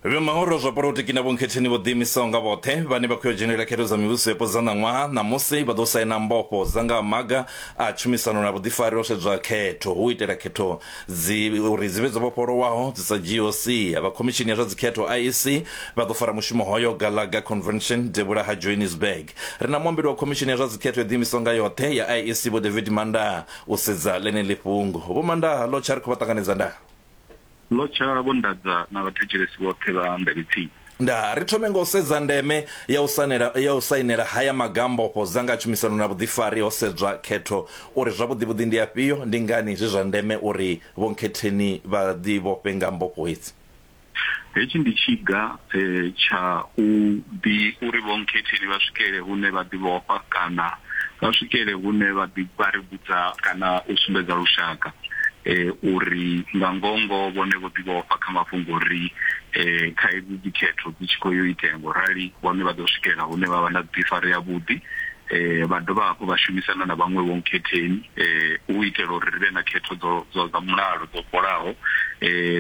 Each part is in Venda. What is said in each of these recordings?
vhemahoro zwa polotiki na vhonkhetheni vho ḓiimisaho nga vhoṱhe vhane vha khou ya dzhenelela khetho dza mivhuso yapo dza ṋaṅwaha ṋamusi vha ḓo saina mbofho dza nga maga a tshumisano na vhuḓifari ho sedzwa khetho hu itela khetho dzi uri dzi vhe dzo vhofholowaho dzi sa dzhiiho sia vha khomishini ya zwa dzikhetho iec vha ḓo fara mushumo hoyo galaga convention devhula ha johannesburg ri na muambeli wa khomishini ya zwa dzikhetho yo ḓiimisaho nga yoṱhe ya iec vho david mandaa u sedza ḽeneḽi fhungo vho mandaa lo tsha ri khou vha ṱanganedza ndaa Ḽo tsha vho nḓadza na vhathetshelesi vhoṱhe vha Ndevhitsini. Nda ri thome nga u sedza ndeme ya u sanela ya u sainela haya maga a mbofho dza nga tshumisano na vhuḓifari ho sedzwa khetho uri zwavhuḓivhuḓi ndi afhio, ndi ngani zwi zwa ndeme uri Vho Nkhetheni vha ḓivhofhe nga mbofho hedzi. Hetshi ndi tshiga eh, tsha u ḓi uri vhonkhetheni vha swikele hune vha ḓi vhofha kana vha swikele hune vha ḓi vha ri vhudza kana u sumbedza lushaka eh, uri nga ngongo vhone vho ḓi vhofha kha mafhungo uri eh, kha hedzi dzikhetho dzi tshi khou yo itea ngo rali vhone vha ḓo swikela hune vha vha na vhuḓifari ha vhuḓi vha dovha hafhu vha shumisana na vhaṅwe vhonkhetheni u itela uri ri vhe na khetho dzo dzo dza mulalo dzo fholaho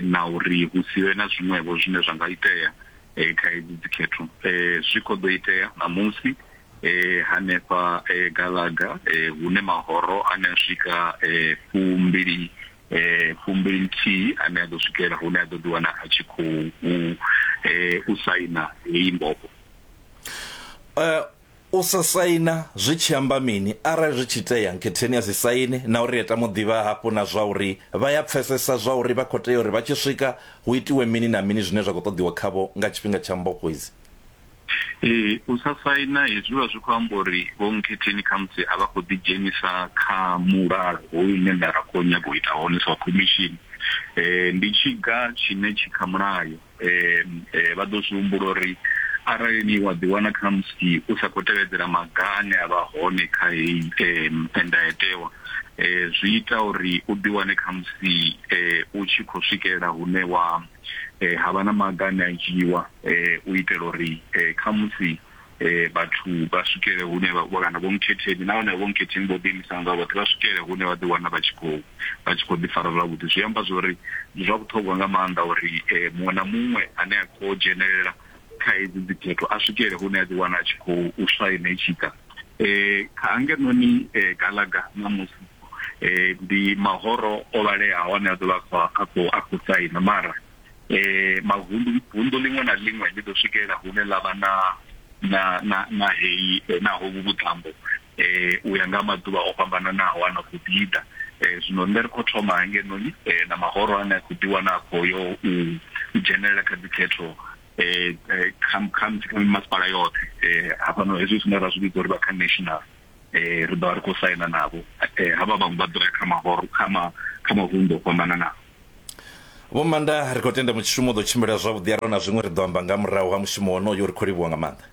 na uri hu si vhe na zwiṅwevho zwine zwa nga itea kha hedzi dzikhetho zwi khou ḓo itea ṋamusi hanefha Galaga hune mahoro ane a swika fumbili fumbili nthihi ane a ḓo swikela hune a ḓo ḓi wana a tshi khou u saina heyi mbofho. U sa saina zwi tshi amba mini? Arali zwi tshi itea, Nketheni a si saine, na uri Eta mu ḓivha hafhu na zwa uri vha ya pfesesa zwa uri vha khou tea uri vha tshi swika hu itiwe mini na mini zwine zwa khou ṱoḓiwa khavho nga tshifhinga tsha mbofho idzi. Ee, u sa saina hezwi zwi vha zwi khou amba uri Vho Nketheni khamusi a vha khou ḓidzhenisa kha mulalo hoyu une nṋe ra khou nyaga u ita hone sa khomishini. Ndi tshiga tshine tshi kha mulayo. vha ḓo zwi humbula uri arali ni wa ḓiwana kha musi u sa khou tevhedzela maga ane a vha hone kha heyi ndayotewa zwi ita uri u ḓiwane kha musi u tshi khou swikelela hune wa havha na maga ane a dzhiiwa u itela uri kha musi eh vhathu vha swikele hune vha kana vho mkhetheni nahone vho mkhetheni vho ḓiimisana nga vhoṱhe vha swikele hune vha ḓiwana vha tshi khou vha tshi khou ḓifara zwavhuḓi zwi amba zwa uri ndi zwa vhuṱhogwa nga maanḓa uri eh, muṅwe na muṅwe ane a khou dzhenelela kha hedzi dzikhetho a swikele hune a ḓiwana a tshi khou u swaina i tshi ḓa um kha ngenoni eh, galaga ṋamusi um ndi mahoro o vhaleaho ane a ḓo vha a khou a khou saina mara e, mavundu vundu ḽiṅwe na ḽiṅwe ḽi ḓo swikelela hune ḽa vha na na na na heyi eh, na hovhu vhuṱambo eh u ya nga maḓuvha o fhambananaho a na khou ḓi ḓa eh zwino nṋe ri khou thoma hangenoni eh na mahoro ane a khou ḓi wana a khou yo u u dzhenelela kha dzikhetho eh eh, kha kha kha masipala yoṱhe eh hafhano hezwi zwine ra zwi vhidza uri vha kha national eh ri ḓo vha ri khou saina navho eh havha vhaṅwe vha ḓo ya kha mahoro kha ma kha mavundu o fhambananaho Vho Manda, ri khou tenda mushumo u ḓo tshimbila zwavhuḓi arali na zwiṅwe ri ḓo amba nga murahu ha mushumo wonoyo ri khou livhuwa nga maanḓa.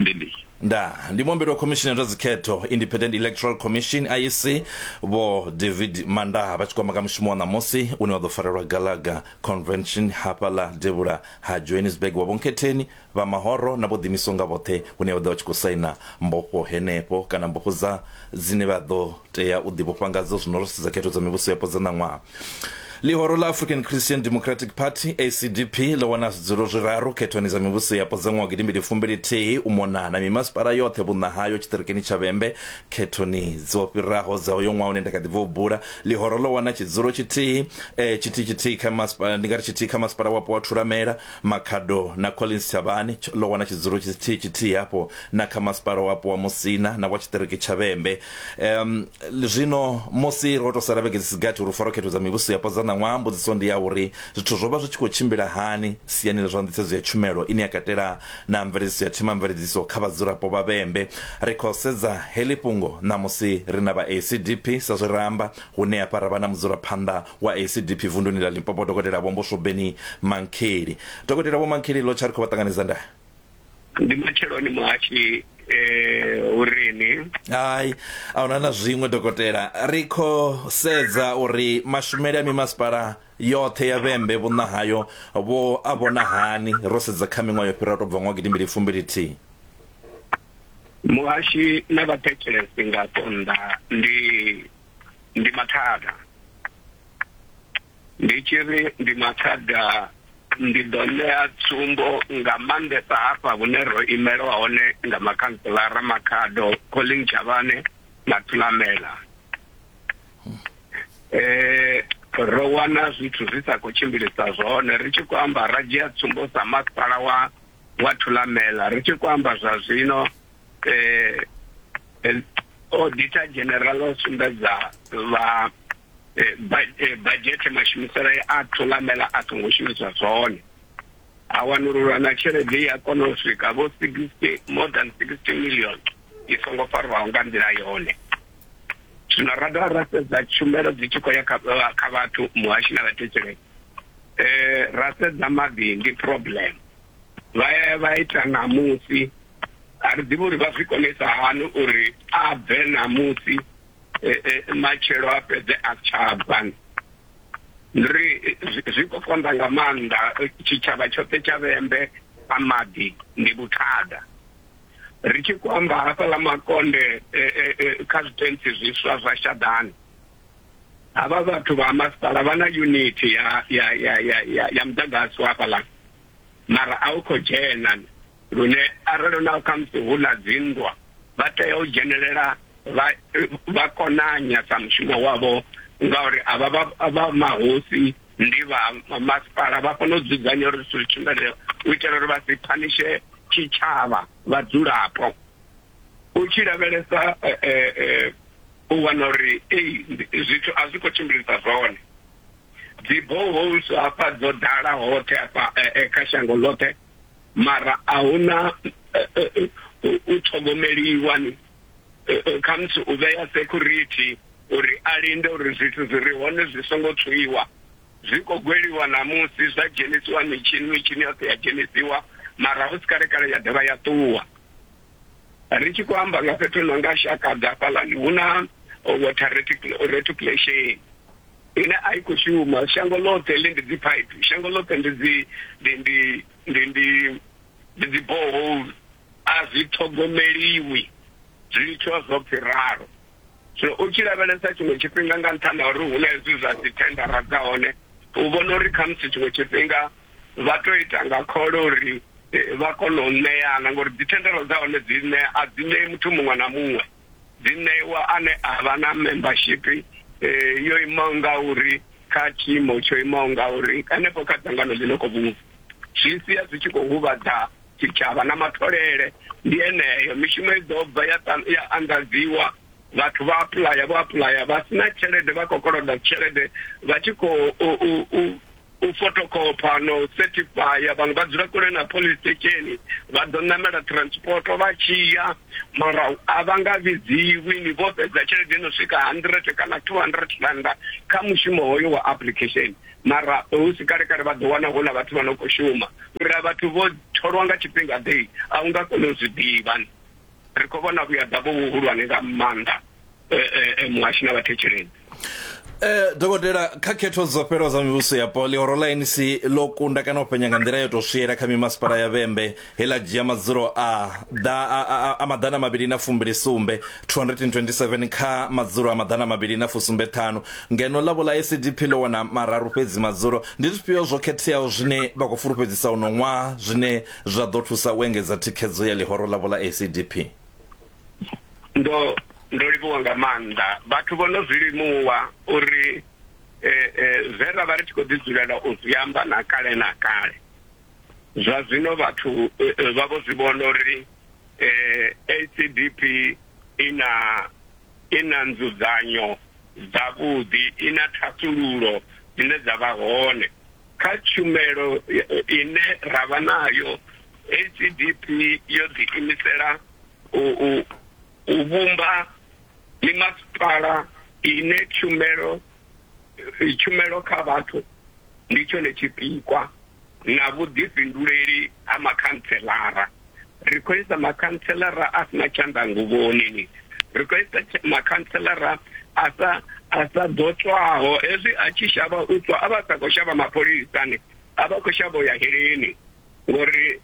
Ndi ndi. Nda, ndi muombeli wa khomishini ya zwa dzikhetho Independent Electoral Commission IEC Vho David Manda vha tshi khou amba nga mushumo wa ṋamusi une wa ḓo farelwa Galaga Convention hafhaḽa devhula ha Johannesburg wa Vhonkhetheni Vha mahoro na vho ḓiimisaho nga vhoṱhe hune vha ḓo vha vha tshi khou saina mbofho henefho kana mbofho dza dzine vha ḓo tea u ḓivhofha ngadzo zwino ro sedza khetho dza mivhusoyapo dza ṋaṅwaha. Ḽihoro ḽa African Christian Democratic Party, ACDP, ḽo wana zwidzulo zwiraru khethoni dza mivhusoyapo dza ṅwaha wa gidimbili fumbili-thihi u mona na mimasipala yoṱhe vhunṋa hayo tshiṱirikini tsha Vhembe. Khethoni dzo fhiraho dza uyo ṅwaha une nda kha ḓi bva u bula, ḽihoro ḽo wana tshidzulo tshithihi, eh, tshithihi-tshithihi kha masipala, ndi nga ri tshithihi kha masipala wapo wa Thulamela, Makhado na Collins Tshavhani ḽo wana tshidzulo tshithihi tshithihi hafho na kha masipala wapo wa Musina na wa tshiṱiriki tsha Vhembe. Um, zwino musi ro tou sala vhege dzi si gathi uri faro khetho dza mivhuso yapo dza ṋaṅwaha, mbudziso ndi ya uri zwithu zwo vha zwi tshi khou tshimbila hani siani ḽa zwa nḓisedzo ya tshumelo ine ya katela na mveledziso ya themamveledziso kha vhadzulapo vha Vhembe. Ri khou sedza heḽi fhungo ṋamusi ri na vha ACDP sa zwe ra amba, hune hafha ra vha na mudzulaphanḓa wa acdp vunduni ḽa limpopo dokotela vho mboswobeni mankheli dokotela vho mankheli ḽo tsha ri khou vha ṱanganedza nda ndi matsheloni muhashi eh urini hai ahuna na zwiṅwe dokotela ri kho sedza uri mashumele a mimasipala yoṱhe ya vhembe vhunna hayo vho a vhona hani ro sedza kha miṅwaha yo fhiraho to bva ṅwaha gidimbili fumbili thihi muhashi na vhathetshelesi nga tonda ndi ndi mathada ndi tshi ri ndi mathada ndi ḓo ṋea tsumbo nga maanḓesa hafha vhune ro imelwa hone nga makhantselara makhado colling chavhane na thulamela um eh, ro wana zwithu zwi sa khou tshimbilisa zwone ri tshi khou amba ra dzhia tsumbo sa masipala wa wa thulamela ri tshi khou amba zwa zwino eh el auditor general o sumbedza vha eh, eh, budget mashumiselo a thulamela a songo shumiswa zwone a wanululwa na tshelede ya kona u swika vho 60 more than 60 million i songo farwaho nga nḓila yone zwino ra dovha ra sedza tshumelo dzi tshi khou ya kha vhathu muhashi na vhathetshelei um ra sedza maḓi ndi problem vha ya vha ita ṋamusi a ri ḓivhi uri vha zwi konisa hani uri a bve ṋamusi eh, eh, matshelo a fhedze a si tsha bva ndi ri eh, zwi- zwi khou konḓa nga maanḓa eh, tshitshavha tshoṱhe tsha vhembe a maḓi ndi vhuthada ri tshi khou amba hafhaḽa makonde eh, eh, eh, kha zwitentsi zwiswa zwa shaḓani havha vhathu vha masipala vha na unit ya ya ya ya ya, ya muḓagasi wa hafhaḽa mara a u khou dzhena lune arali na khamusi hu na dzinndwa vha tea u dzhenelela vha vha konanya sa mushumo wavho ngauri avha vha mahosi ndi vha masipala vha kona u dzudzanya uri zwithu zwi tshimbile u itela uri vha si phanishe tshitshavha vhadzulapo u tshi lavhelesa eh, eh, eh, u wana uri ei zwithu a zwi khou tshimbilisa zwone dzi boreholes hafha dzo ḓala hoṱhe hafha kha shango ḽoṱhe mara a hu na u ṱhogomeliwa ni khamusi u vhea security uri a linde uri zwithu zwi re hone zwi songo tswiwa zwi khou gweliwa ṋamusi zwa dzhenisiwa mitshini mitshini yoṱhe ya dzhenisiwa mara hu si kalekale ya dovha ya ṱuwa ri tshi khou amba nga fhethu no nga shakadzi hafhaḽani hu na water reticulation ine a i khou shuma shango ḽoṱhe ḽi ndi dziphaiphi shango ḽoṱhe ndi dzi ndi ndi ndi ndi ndi dzi borehole a zwi ṱhogomeliwi zwi litshiwa zwo pfhi ralo zwino u tshi lavhelesa tshiṅwe tshifhinga nga nṱhani ha uri hu na hezwi zwa dzi thendara dza hone u vhona uri khamusi tshiṅwe tshifhinga vha tou ita nga khole uri vha kone u ṋeana ngori dzithendelo dza hone dzi ṋe a dzi ṋei muthu muṅwe na muṅwe dzi ṋeiwa ane a vha na membership yo imaho nga uri kha tshiimo tsho imaho nga uri hanefho kha dzangano ḽi no kho vhungu zwi sia zwi tshi khou huvhadza tshitshavha na matholele ndi eneyo mishumo i ḓo bva ya anḓadziwa vhathu vha apuḽaya vho apuḽaya vha sina tshelede vha khou koloda tshelede vha tshi khou u fotokopa na u certifya vhaṅwe vha dzula kule na police station vha ḓo ṋamela transport vha tshi ya mara a vha nga vhidziwi ni vho fhedza tshelede no swika hundred kana two hundred randa kha mushumo hoyo wa application mara hu si kale kale vha ḓo wana hu na vhathu vha no khou shuma uri a vhathu vho tholwa nga tshifhinga ḓe a u nga koni u zwi ḓivha ri khou vhona vhuyaḓa vho vhuhulwane nga maanḓa muhashi na vhathetshelezi Eh dokotela kha khetho dzo fhelo dza mivhuso ya poli horo la ANC lo kunda kana u penya nga nḓila yo to swiyela kha mimasipala ya Vhembe hela dzhia madzulo a da a maḓana mabili na fumbili sumbe 227 kha madzulo a maḓana mabili na fusumbe ṱhanu ngeno ḽa vhola SDP ḽo wana mararu fhedzi madzulo ndi zwifhio zwo khetheaho zwine vha khou fulufhedzisa uno ṅwaha zwine Zwa ḓo thusa u engedza thikhedzo ya ḽihoro ḽavho ḽa ACDP. Ndo ndo livhuwa nga maanḓa vhathu vho no zwi limuwa uri zwe ra vha ri tshi khou ḓi dzulela u zwi amba na kale na kale zwa zwino vhathu vha vho zwi vhona uri ACDP i na i na nzudzanyo dzavhuḓi, i na thasulullo dzine dza vha hone. kha tshumelo ine ra vha nayo HDP yo ḓiimisela u u u vhumba mimasipala ine tshumelo tshumelo kha vhathu ndi tshone tshipikwa na vhuḓifhinduleli ha makhantselara. ri khou isa makhantselara a si na tshanḓa nguvhoni ni ri khou isa makhantselara a sa a sa ḓo tswaho hezwi a tshi shavha u tswa a vha sa khou shavha mapholisa ni a vha khou shavha u ya heleni ngori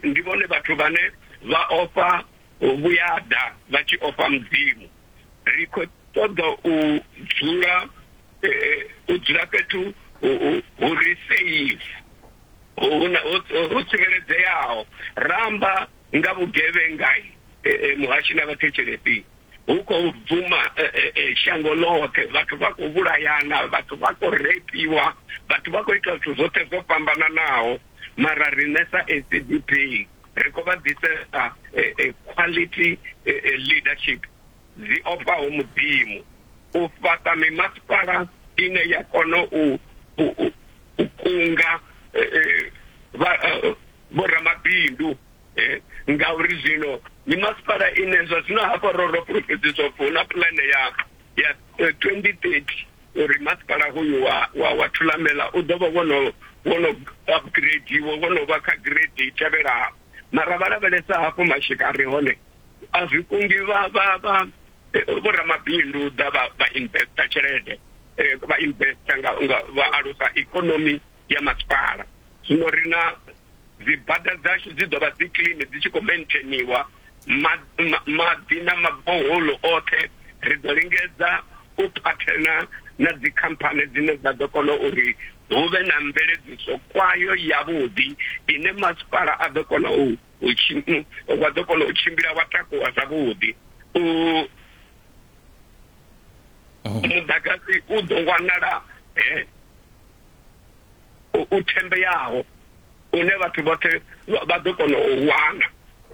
ndi vhone vhathu vhane vha ofha vhuyada vha tshi ofha mudzimu ri khou ṱoḓa u dzula u dzula fhethu hu re safe ho tsireledzeaho ramba nga vhugevhengai muhashi na vhathetshelesi hu khou bvuma shango ḽoṱhe vhathu vha khou vhulayana vhathu vha khou repiwa vhathu vha khou ita zwithu zwoṱhe zwo fhambananaho mara riṋe sa SADP ri khou vha ḓisesa quality leadership dzi ofhaho Mudzimu, u fhaṱa mimasipala ine ya kona u u kunga eh, eh, eh, vhoramabindu ngauri zwino mimasipala ine zwa zwino hafha ro ro fulufhedziswa upfi hu na pulane ya ya 2030 uri masipala hoyu wa wa wa thulamela u ḓo vha wono wono upgrade wo wono vha kha grade i tevhelaho mara vha lavhelesa hafho mashika a re hone a zwi kundi vha vha vha eh, vho ramabindu ḓa vha vha investa tshelede eh, vha investa nga nga vha alusa ikonomi ya masipala zwino ri na dzibada dzashu dzi ḓo vha dzi clean dzi tshi khou maintainiwa ma- ma- maḓi na maboholo oṱhe ri ḓo lingedza u phathena na dzikhamphani dzine dza ḓo kona uri hu vhe na mveledziso kwayo yavhuḓi ine masipala a ḓo kona u u tshi wa ḓo kona u tshimbila wa takuwa zwavhuḓi u oh. muḓagasi u ḓo wanala eh, u thembeyaho une vhathu vhoṱhe vha ḓo kona u wana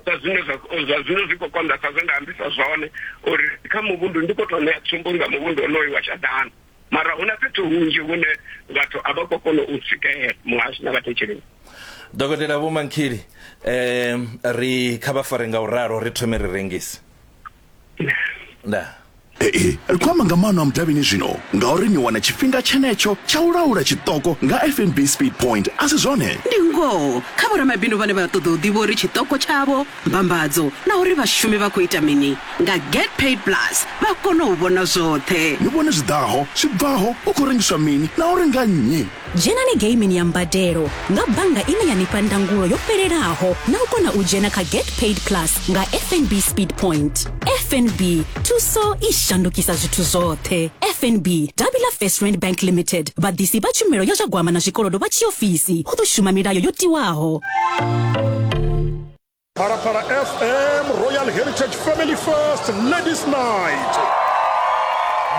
sa zwine zwa zwino zwi khou konḓa sa zwe nda ambisa zwone uri kha muvhundu ndi khou tou ṋea tsumbo nga muvhundu onoyu wa shadana mara hu na fhethu hunzhi hune vhathu a vha khou kona u swikelela muhasho na vhathetshelesi dokotela vho mankhili um ri kha vha fare nga u ralo ri thome ri rengise nda Ee, ri khou amba nga maano a mudavhini zwino ngauri ni wana tshifhinga tshenetsho tsha u laula tshiṱoko nga fnb speed point a si zwone ndi ngoho kha vhoramabindu vhane vha ṱoḓa u ḓivha uri tshiṱoko tshavho Mbambadzo na uri vhashumi vha khou ita mini nga Get Paid Plus vha kone u vhona zwoṱhe. Ni vhone zwi ḓaho, zwi bvaho, hu khou rengiswa mini na uri nga nnyi. Dzhenani geimini ya mbadelo nga bannga ine ya ni fha ndangulo yo fhelelaho na u kona u dzhena kha Get Paid Plus nga FNB Speed Point. FNB, thuso i shandukisa zwithu zwoṱhe. FNB, davhi ḽa First Rand Bank Limited, vhaḓisi vha tshumelo ya zwa gwama na zwikolodo vha tshiofisi, hu ḓo shuma milayo yo tiwaho. Phalaphala FM Royal Heritage Family First Ladies Night.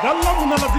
Nga ḽa vhuṋa ḽa